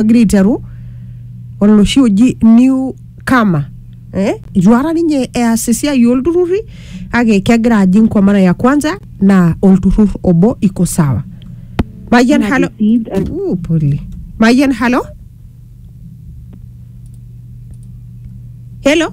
egira aiteru oloshi oji new kama eh? itu ara ninye eas esiai olturruri kake kegira ajing kwa mara ya kwanza naa olturrur obo iko sawa mayian halo Uh, pole mayian halo helo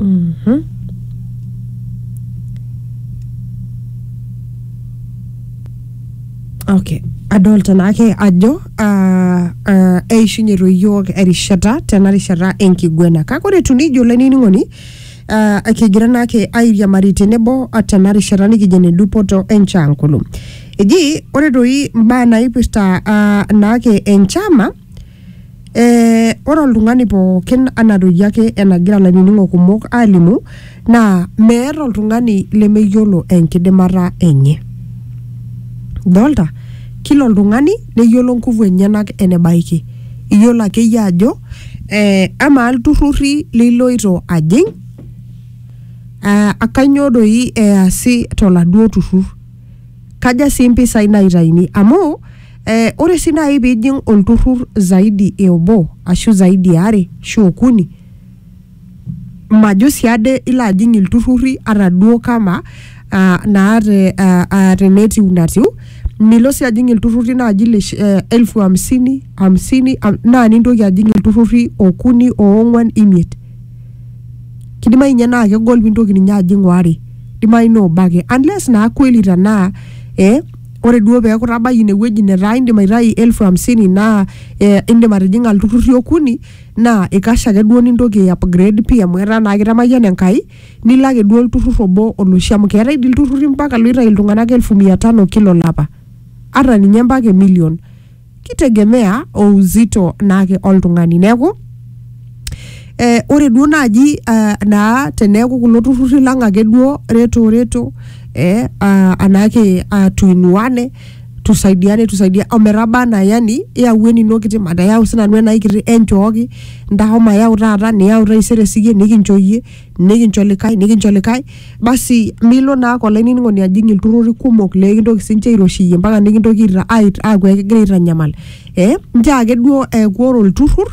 Mhm. okay adolta naake ajo ah, ah, eishunye toyiok erishata tena rishata enkiguena kake ore etu nijo olainining'oni ah, kigira naake airiamari tenebo ah, tena rishata nikijo ene dupoto enchankulu eji ore toi imbaa naipirta ah, naake enchama Eh, ore oltung'ani pookin anaa doi ake enagira lainining'o kumok alimu naa meeta oltung'ani lemeyiolo enkidimata enye dolta kila oltung'ani neyiolo nguvu enyenak enebaiki iyiolo akeyie ajo eh, amaa ilturrurri liloito ajing eh, kanyoo doi easi toladuo turrur kaja sii impisai naitaini amu Eh, ore sii naaji piijing olturrur zaidi e obo ashu zaidi e are ashu okuni majo sii ade ilo ajing ilturrurri ata duo kama ah, naa te, ah, ah, tenetiu natiu milo sii ajing ilturrurri naaji le shi- eh, elfu hamsini hamsini am- naa nintoki ajing ilturrurri okuni oong'uan imiet kidimayu ninye naa kegol pintoki ninye ajing waare kidimayu naa obo ake unless naa kweli tanaa eh, ore duo peeku itabayie ine wueji netaa indim aitayu elfu hamsini naa eh, indim atijing'a ilturrurri okuni naa ikash ake duo nintoki ai upgrade pii amu etaa naa kitamayiana Enkai nilo ake duo olturrur obo oloshi amu keetae dii ilturrurri mpaka loitayu iltung'anak elfu mia tano kila olapa ata ninye mpaka e million. kitegemea o uzito naake oltung'ani. Neeku eh, ore duo naaji eh, naa teneeku kulo turrurri lang ake duo reto reto eh, ah, anaake ah, tuinuane tusaidiane tusaidia ometaba anaa yani iyau enino kiti matayau sinanu enai kiti enchooki ntasho mayau taata niyau taisere siyie nikincho iyie nikincho likae nikincho likae basi milo naa ake olainining'oni ajing ilturruri kumok lekintoki sinche airoshiyie mpaka nikintoki aita- ait- aaku ekigira aitanyamal eh, nchoo ake duo eeku ore olturrur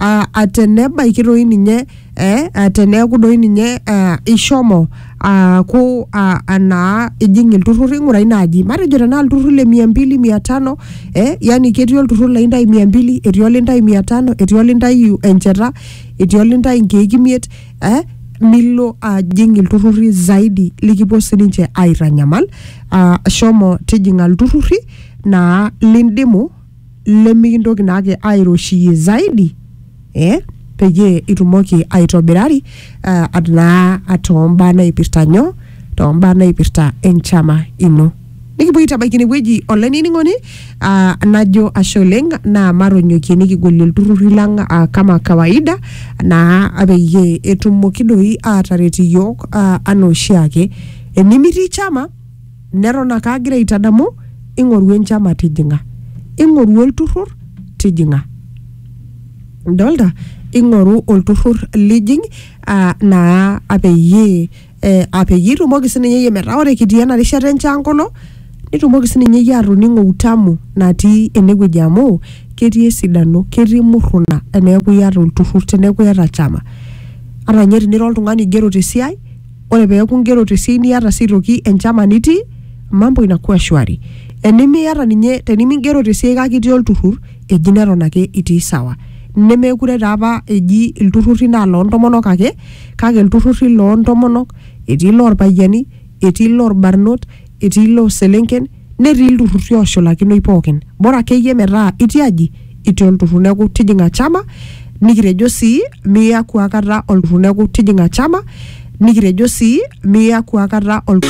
uh, atenebaiki doi ninye eh, uh, teneeku doi ninye uh, ishomo aaku uh, anaa ijing ilturruri ng'urai naaji matejo tenaa ilturruri le mia mbili mia tano eh, yani ketii olturrur laintai mia mbili etii olintai mia tano etii olintai encheta etii olintai inkeek imiet eh, milo ajing ilturrurri zaidi likipuo sininche aitanyamal ah, shomo tijing'a ilturrurri naa lindimu lemikintoki naake airoshiyie zaidi eh, peyie itumoki aitobirari ah, at- naa tombaa naipirta nyoo tombaa naipirta enchama ino Nikipuo aitabaiki inewueji olainining'oni ah, najo ashe oleng naa matonyokie nikigolie ilturrurri lang ah, kama kawaida naa peyie etumoki doi aataret iyiook ah, anaa oshiake. Enimitii chama neton ake agira aitadamu ing'oru enchama tijing'a, ing'oru olturrur tijing'a. Idolta? Ing'oru olturrur lijing ah, naa peyie eh, ah, peyie itumoki sininye iyie metaa ore kitii ena rishata enchankolo nitumoki sininye iyie atoning'o utamu natii enewueji amu ketii esidano ketii murruna eneeku iyata olturrur teneeku iyata chama ata ninye tinira oltung'ani oigero tesiai ore peeku ingero tesiai niata sii aitoki enchama nitii mambo inakuwa shwari enimiata ninye tenimingero tesiai kake itii olturrur eji neton ake itii sawa nemekure taa apa eji ilturruri naa loontomonok ake kake ilturrurri loo ntomonok, etii iloo lpayiani, etii iloo lbarnot, etii iloo selenken netii ilturrurri ooshulakinoi pookin. Bora akeyie metaa itii aji, itii olturrur. Neeku tijing'a chama nikitejo sii miaku akata olturrur. Neeku tijing'a chama nikitejo sii miaku akata olturrur.